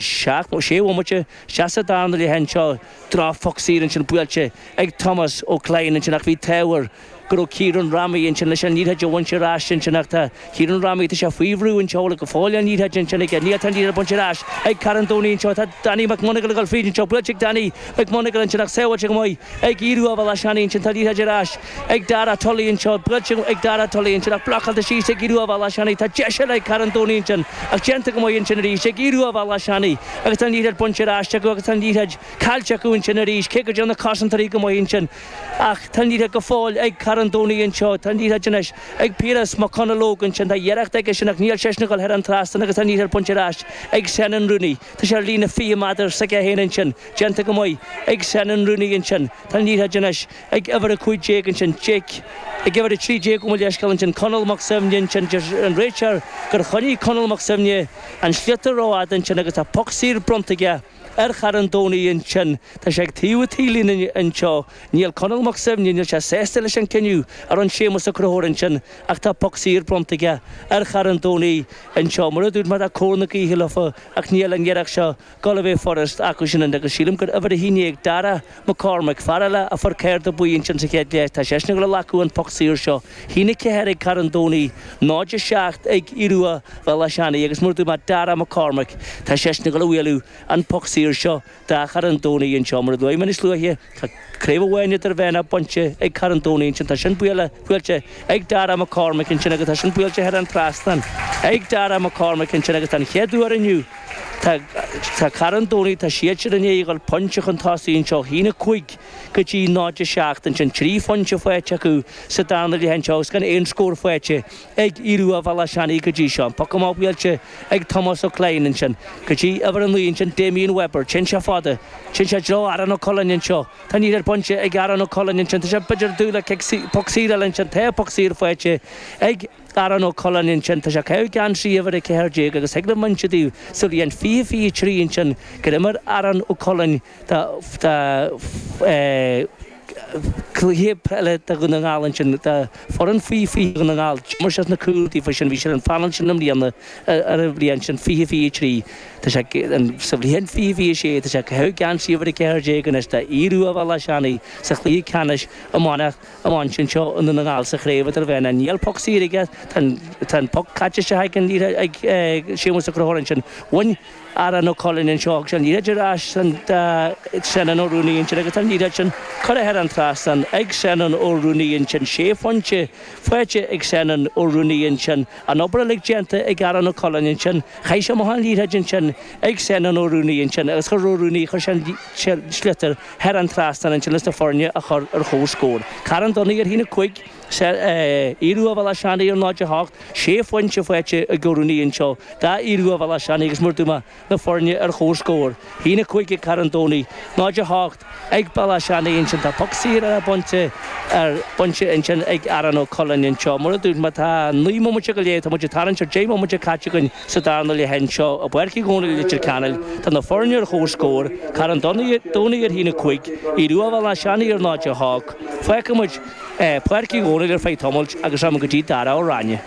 Seacht nó sé bhomaite isteach sa darna leath anseo, droch phoc saor ansin buailte ag Tomás Ó Clainn ansin ach bhí an t-ádh air go raibh Ciarán Rami ansin leis an liathróid a bhaint ar ais ansin ach tá Ciarán Rami, tá sé faoi bhrú anseo go fóill an liathróid ansin aige, níl tá an liathróid bainte ar ais ag Carn Domhnaigh anseo, tá Danny McMonagle ag dul fríd anseo, buailte ag Danny McMonagle ansin ach sábháilte go maith ag Aodh Ruadh Bhéal Átha Seanaidh ansin, tá an liathróid ar ais. Ag Dara Tully anseo, buailte ag Dara Tully ansin ach blocáilte síos ag Aodh Ruadh Bhéal Átha Seanaidh. Tá deis eile ag Carn Domhnaigh ansin ach déanta go maith ansin arís ag Aodh Ruadh Bhéal Átha Seanaidh agus tá an liathróid bainte ar ais acu agus tá an liathróid caillte acu ansin arís cé go dtearn na cosantóirí go maith ansin ach tá an liathróid go fóill ag Carn Domhnaigh anseo. Tá an liathróid anois ag Piaras Mac Conallóg ansin. Tá iarracht aige sin ach níl sé sin ag dul thar an trasnán agus tá an liathróid bainte ar ais ag Senan Rooney. Tá sé ar líne 20 meadar s'aige féin ansin. Déanta go maith ag Senan Rooney ansin. Tá an liathróid anois. ag uimhir 15 ansin, Jake, ag uimhir 13 ó mo leithscéal ansin, Conall Mac Suibhne ansin, deir an réiteoir gur choinnigh Conall Mac Suibhne an sliotar ró-fhada ansin agus tá poc saor bronnta aige ar Charn Domhnaigh ansin, tá sé ag taobh an taobhlíne anseo, níl Conall Mac Suibhne, níl sé sásta leis an cinneadh a rinne Séamus Ó Conchúir ansin ach tá poc saor bronnta aige ar Charn Domhnaigh anseo, mar a dúirt mé tá cóir na gaoithe leofa ach níl an iarracht seo Ag dul a bheith furast acu sin an agus sílim gur uimhir a haon déag Dara Mac Cormaic, fear eile a fuair cárta buí ansin sa chéad leath, tá seisean ag dul a ghlacadh an poc saor seo. Sé a haon a ceathair ag Carn Domhnaigh, 0-7 ag Aodh Ruadh Bhéal Átha Seanaidh agus mar a dúirt mé Dara Mac Cormaic, tá seisean ag dul a bhualadh an poc saor seo do Charn Domhnaigh anseo mar a luaigh mé níos luaithe, Tá craobh amháin idirmheánach bainte ag Carn Domhnaigh ansin. Tá sin buailte ag Darragh McCormick ansin agus tá sin buailte thar an trasnán ag Darragh McCormick ansin agus don chéad uair inniu tá Carn Domhnaigh, tá siadsan i ndiaidh a dhul pointe chun tosaigh anseo. Sé 1-5 go dtí 0-7 ansin, trí phointe faighte acu sa darna leath anseo agus gan aon scór faighte. ag Aodh Ruadh Bhéal Átha Seanaidh go dtí seo. An poc amach buailte ag Tomás Ó Clainn ansin go dtí uimhir a naoi ansin Damien Webber. Téann sé fada. Téann sé i dtreo Aaron Ó Cuilinn anseo. Tá an liathróid bainte ag Aaron Ó Cuilinn ansin. Tá sé b'fhéidir ag dúil le cic saor, poc saor eile ansin. Tá poc saor faighte ag Aaron Ó Cuilinn ansin. Tá sé ag caitheamh geansaí uimhir a ceathair déag agus thig liom a insint daoibh sa bhliain fiche, fiche trí ansin gur imir Aaron Ó Cuilinn Tá cluiche peile do Dhún na nGall ansin, do fhoireann faoi 20 Dhún na nGall. D'imir sé sna cúil daofa sin. Bhí sé ar an phainéal sin i mbliana, ar an bhliain sin, 20, 23. Tá sé, sa bhliain 20, 26, tá sé ag caitheamh geansaí uimhir 14 anois d'Aodh Ruadh Bhéal Átha Seanaidh sa chluiche ceannais iomána sin seo i nDún na nGall sa chraobh idirmheánach. Níl poc saor aige. Tá an poc caite isteach ag Séamus Ó Conchúir ansin. Bhain. Aaron Ó Cuilinn anseo agus an liathróid ar ais do Senan Ó Ruanaí ansin agus an liathróid sin curtha thar an trasnán ag Senan Ó Ruanaí ansin. Sé phointe faighte ag Senan Ó Ruanaí ansin. An obair uilig déanta ag Aaron Ó Cuilinn ansin. Chaith sé amach an liathróid ansin ag Senan Ó Ruanaí ansin agus chuir Ó Ruanaí, chuir sé an sliotar thar an trasnán ansin leis na foirne a chur ar chomhscór. Carn Domhnaigh ar a haon a cúig. Sea, Aodh Ruadh Bhéal Átha Seanaidh ar náid a hocht, sé phointe faighte ag Ó Ruanaí anseo d'Aodh Ruadh Bhéal Átha Seanaidh agus mar a dúirt mé na foirne ar chomhscór, hAon a cúig ag Carn Domhnaigh, náid a hocht ag Béal Átha Seanaidh ansin tá poc saor eile bainte ar bainte ansin ag Aaron Ó Cuilinn anseo. Mar a dúirt mé tá naoi mbomaite go leith, tá muid ag tarraingt ar deich mbomaite caite againn sa darna leath anseo i bPáirc Uí Dhónaill i Leitir Ceanainn. Tá na foirne ar chomhscór, Carn Domhnaigh ar hAon a cúig, Aodh Ruadh Bhéal Átha Seanaidh ar náid a hocht. Fágfaidh muid. Páirc Uí Dhomhnaill ar feadh tamaill agus rachaidh mé go dtí Dara amhráin.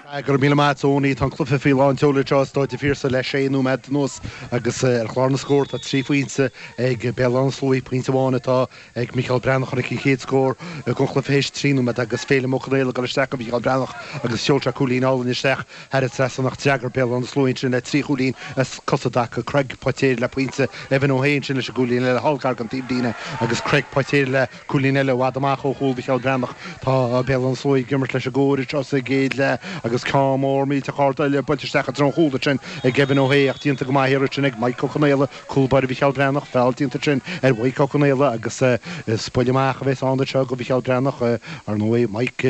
Go raibh míle maith Tony. Tá an cluiche faoi lán tseoil anseo i Stáid an Phiarsaigh le sé nóiméad anuas agus ar chlár na scór tá trí phointe ag Béal Átha na Sluaighe, pointe amháin atá ag Micheál Breathnach tháinig an chéad scór den chluiche théis trí nóiméad agus Féilim Ó Conaola ag dul isteach do Mhicheál Breathnach agus sheol sé cúilín álainn isteach thar an trasnán ach d'fhreagair Béal Átha na Sluaighe ansin le trí chúilín as cosa i dtaca, Craig Poitéir le pointe, Evan Ó hAodha ansin leis an gcúilín eile, thall gar den taobhlíne agus Craig Poitéir le. Cúilín eile i bhfad amach ó chúl Mhicheál Breathnach. Tá Béal Átha na Sluaighe ag imirt leis an gcóir seo sa gcéad leath agus ceann mór millteach ard eile buailte isteach i dtreo an chúil ansin ag Evan Ó hAodha ach déanta go maith arís ansin ag Maidhc Ó Conaola, cúl báire Mhicheál Breathnach. Feall déanta ansin ar Mhaidhc Ó Conaola agus is buille amach a bheas ann anseo go Mhicheál Breathnach. Ar ndóigh, Maidhc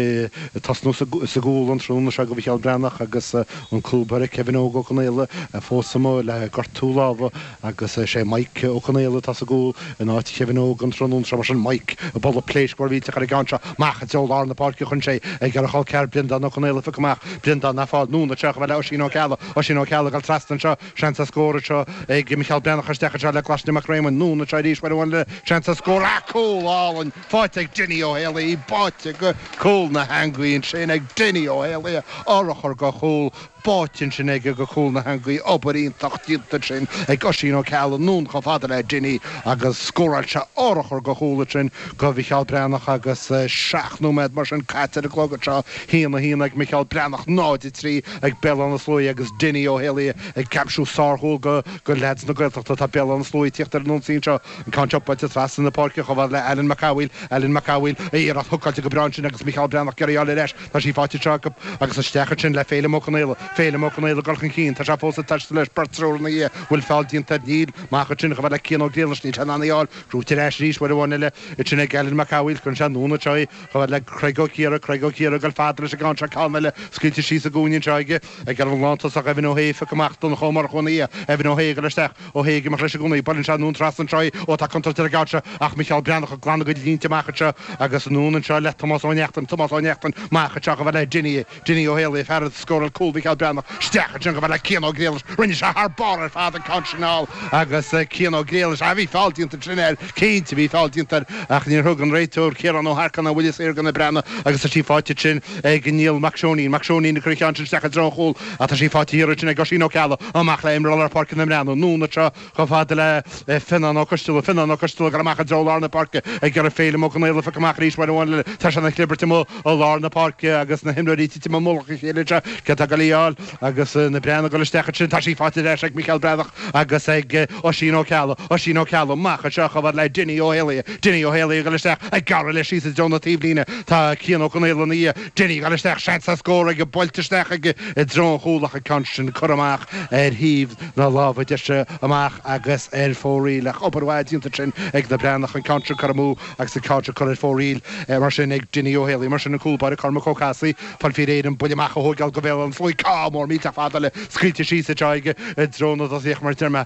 ag tosnú sa gcúl an tráthnóna seo go Mhicheál Breathnach agus an cúl báire Kevin Óg Ó Conaola fós amuigh le gortú lámha. Agus is é Mike Ó Conaola atá sa gcúl in áit Kevin Óg an tráthnóna seo. Mar sin, Mike, ag bualadh pléisc mhór mhillteach ar an gceann seo. Amach i dtreo lár na páirce chuaigh sé ag iarraidh a chol ceathar Breandán Ó Conaola a phiocadh amach. Breandán á fáil, anonn anseo chomh fada le Oisín Ó Ceallaigh. Oisín Ó Ceallaigh ag dul trasna anseo. Seans ar scór anseo ag Micheál Breathnach. Isteach anseo le Glaisne Mac Réamoinn. Anonn anseo arís, uair amháin eile. Seans ar scór. Ach cúl álainn faighte ag Dinny Ó hÉalaí. Í báite go cúl na heangaí ansin ag Dinny Ó hÉalaí. Urchar go chúl. báite ansin aige go cúl na heangaí. Obair iontach déanta ansin ag Oisín Ó Ceallaigh anonn chomh fada le Dinny agus scóráil sé urchar go chúl ansin go Mhicheál Breathnach agus seacht nóiméad mar sin caite ar an gclog anseo. hAon, a hAon ag Micheál Breathnach, 0, 3 ag Béal Átha na Sluaighe agus Dinny Ó hÉalaí ag aimsiú sárchúil go go leaids na Gaeltachta. Tá Béal Átha na Sluaighe ag tíocht ar an ionsaí anseo. An ceann seo buailte trasna na páirce chomh fada le Alan Mac Amhail. Alan Mac Amhail, iarracht hookáilte go breá ansin agus Micheál Breathnach ag iarraidh í a fháil ar ais. Tá sí faighte anseo acu agus isteach ansin le Féilim Ó Conaola. Féilim Ó Conaola ag dul chun cinn. Tá sé fós ag taisteal leis beirt triúr ina dhiaidh. Bhfuil feall déanta air? Níl. Amach ansin chomh fada le Cian Ó Griallais níl sé in ann í a fháil. Brúite ar ais arís uair amháin eile ansin ag Alan Mac Amhaoil cuireann sé anonn anseo í chomh fada le Creig Ó Ciardha. Creig Ó Ciardha ag dul fada leis an gceann seo. Ceann eile scaoilte síos sa gcúinne anseo aige. Ag iarraidh an lántosach Evan O'Hea a phiocadh amach Donncha Ó Murchú ina dhiaidh. Evan O'Hea ag dul isteach. O'Hea ag imeacht leis i gcónaí. Buaileann sé anonn trasna anseo í. Ó tá contúirt ar an gceann seo ach Micheál Breathnach ag glanadh a gcuid línte amach anseo agus anonn anseo le Tomás Ó Neachtain. Tomás Ó Neachtain amach anseo chomh fhad le Dinny, Dinny Ó hÉalaí, an fear a scóráil cúl Mhicheál Breathnach. Isteach ansin chomh fada le Cian Ó Griallais. Rinne sé thar barr ar fad an ceann sin a fháil agus Cian Ó Griallais, ah bhí feall déanta ansin air. Cinnte, bhí feall déanta air ach níor thug an réiteoir Ciarán Ó hEarcáin aon bhuille saor go na Breathnaigh agus tá sí faighte ansin ag Niall Mac Seoinín. Mac Seoinín ag cur an cheann sin isteach i dtreo an chúil ach tá sí faighte thiar ansin ag Oisín Ó Ceallaigh. Amach le imreoir lár páirce na mBreathnach, anonn anseo chomh fada le Fionnán Ó Coisteala. Fionnán Ó Coisteala ag dul amach i dtreo lár na páirce ag iarraidh Féilim Ó Conaola a phiocadh amach arís uair amháin eile. Tá sé ina chlibirt amuigh i lár na páirce agus na himreoirí ag titim i mullach a chéile. Sea, cé atá ag goil á fáil. Agus na Breathnaigh ag dul isteach ansin, tá sí faighte ar ais ag Micheál Breathnach agus ag Oisín Ó Ceallaigh. Oisín Ó Ceallaigh amach anseo chomh fhad le Dinny Ó hÉalaithe. Dinny Ó hÉalaithe ag dul isteach, ag gearradh leis síos i dtreo na taobhlíne. Tá Cian Ó Conaola ina dhiaidh. Dinny ag dul isteach, seans ar scór aige, buailte isteach aige i dtreo an chúil ach an ceann sin curtha amach ar thaobh na láimhe deise amach agus ar fóraoil. Ach obair mhaith déanta ansin ag na Breathnaigh an ceann sin curtha amú agus an ceann seo curtha ar fóraoil mar sin ag Dinny Ó hÉalaithe. Mar sin an cúl báire Cormac Ó Cathasaigh. Fáil faoi réir an buille amach a thóigeáil go Bhéal Átha na Sluaighe, ceann mór millteach fada eile scaoilte síos anseo aige i dtreo na dtosaithe ach mar a deir mé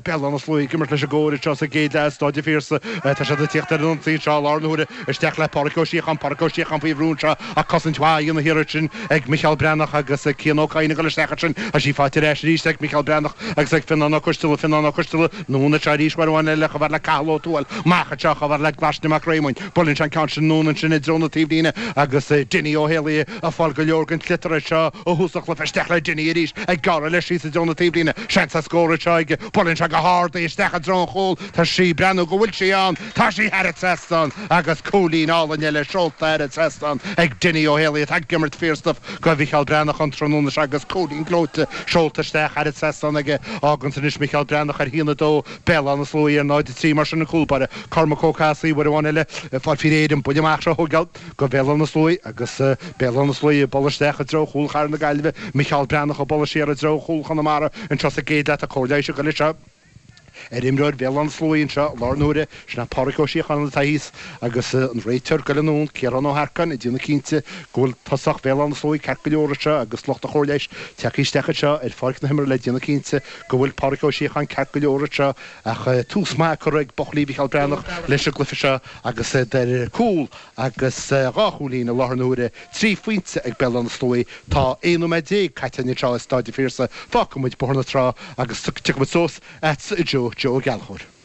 Béal Átha na Sluaighe ag imirt leis an gcóir seo sa gcéad leath i Stáid an Phiarsaigh. Tá siad ag tíocht ar an ionsaí anseo i láthair na huaire isteach le Pádraic Ó Síocháin, Pádraic Ó Síocháin faoi bhrú anseo ach cosaint mhaith á dhéanamh thiar ansin ag Micheál Breathnach agus ag Cian Ó Cadhain ag dul isteach ansin tá sí faighte ar ais arís ag Micheál Breathnach agus ag Fionnán Ó Coisteala, Fionnán Ó Coisteala, anonn anseo arís uair amháin eile, chomh fhad le Cathal Ó Tuathail, amach anseo chomh fhad le Glaisne Mac Réamoinn. Buaileann sé an ceann sin anonn ansin i dtreo na taobhlíne agus Dinny Ó hÉalaí ag fáil go leor den tsliotar anseo ó thús an chluiche. Isteach le Dinny arís, ag gearradh leis síos i dtreo na taobhlíne. Seans ar scór anseo aige. Buaileann sé go hard í isteach i dtreo an chúil. Tá sí breathnú go bhfuil sí ann. Tá sí thar an trasnán agus cúilín álainn eile seolta thar an trasnán ag Dinny Ó hÉalaí atá ag imirt fíorstuf go Mhicheál Breathnach an tráthnóna seo agus cúilín gleoite seolta isteach thar an trasnán aige. Fhágann sin anois Micheál Breathnach ar a 1, 2. Béal Átha na Sluaighe, 0, 3 mar sin an cúl báire Cormac Ó Cathasaigh uair amháin eile ag fáil faoi réir an buille amach a thógáil go Bhéal Átha na Sluaighe agus Béal Átha na Sluaighe ag bualadh isteach i dtreo chúl Chathair na Gaillimhe Micheál Breathnach ag bualadh siar i dtreo chúl Chonamara anseo sa gcéad leath Tá cóir leighis ag goil anseo ar imreoir Bhéal Átha na Sluaighe anseo i láthair na huaire sin é Pádraic Ó Síocháin atá thíos agus an réiteoir goil anonn Ciarán Ó hEarcáin ag déanamh cinnte go bhfuil tosach Bhéal Átha na Sluaighe ceart go leor anseo agus lucht an chóir leighis tagtha isteach anseo ar pháirc na himeartha le déanamh cinnte go bhfuil Pádraic Ó Síocháin ceart go leor anseo ach tús maith curtha ag buachaillí Mhicheál Breathnach leis an gcluiche seo agus iad ar cúl agus dhá chúilín i láthair na huaire, trí phointe ag Béal Átha na Sluaí. Tá 11 nóiméad caite anseo i Stáid an Phiarsaigh. Fágfaidh muid Bóthar na Trá agus tiocfaimid suas agatsa a Joe Joe Ó Gallchóir.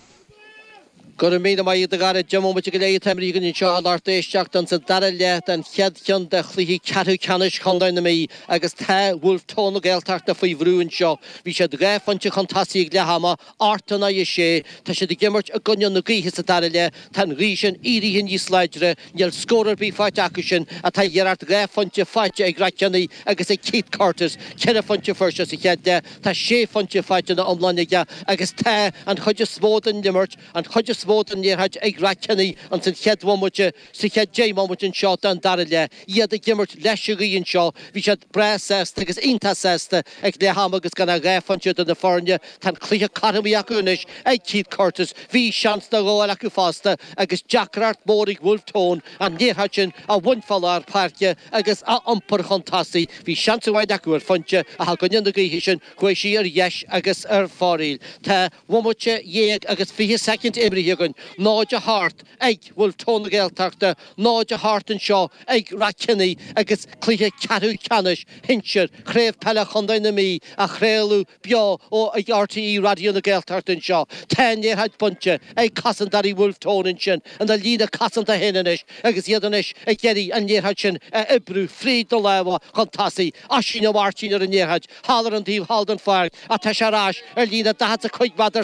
Go raibh míle maith agat a Dhara, deich mbomaite go leith imrithe againn anseo a lucht éisteachta insa dara leath den chéad cheann de chluiche ceathrú ceannais Chontae na Mí agus tá Bhulf Tón na Gaeltachta faoi bhrú anseo. Bhí siad dhá phointe chun tosaigh ag leath ama, a hocht in aghaidh a sé. Tá siad ag imirt i gcoinne na gaoithe sa dara leath, tá an ghaoth sin éirithe níos láidre, Níl scór ar bith faighte acu sin, tá siad ar a hocht, dhá phointe faighte ag Ráth Cheannaigh agus ag Keith Curtis, ceithre phointe fuair sé sa chéad leath, tá sé phointe faighte ina iomláine aige agus tá an chuid is mó den imirt, an chuid is mó den liathróid ag Ráth Cheannaigh insan chéad bhomaite, sa chéad deich mbomaite anseo den dara leath, iad ag imirt leis an ghaoth anseo, bhí siad breá sásta agus iontach sásta. Ag leath ama agus gan ach dhá phointe idir na foirne, tá an cluiche cothromaithe acu anois ag Keith Curtis. Bhí seans nó dhó eile acu fosta agus deacracht mhór ag Bhulf Tón an liathróid sin a bhaint fá lár páirce agus a iompar chun tosaigh. Bhí seans amháin acu ar phointe ach i gcoinne na gaoithe sin chuaigh sí ar dheis agus ar fóraoil. Dhá bhomaite dhéag agus fiche soicind imrithe againn, 0 a hocht. Ag Bhulf Tón na Gaeltachta 0 a hocht anseo ag Ráth Cheannaigh agus cluiche ceathrú ceannais shinsir Chraobh Peile Chontae na Mí á chraoladh beo ar RTÉ Raidió na Gaeltachta anseo. Tá an liathróid bainte ag cosantóirí Bhulf Tón ansin ina líne cosanta féin anois agus iad anois ag iarraidh an liathróid sin a oibriú fríd na lámha chun tosaigh. Oisín Ó Máirtín ar an liathróid thall ar an taobh thall den pháirc ach tá sé ar ais ar líne 40 is a cúig mheadar sa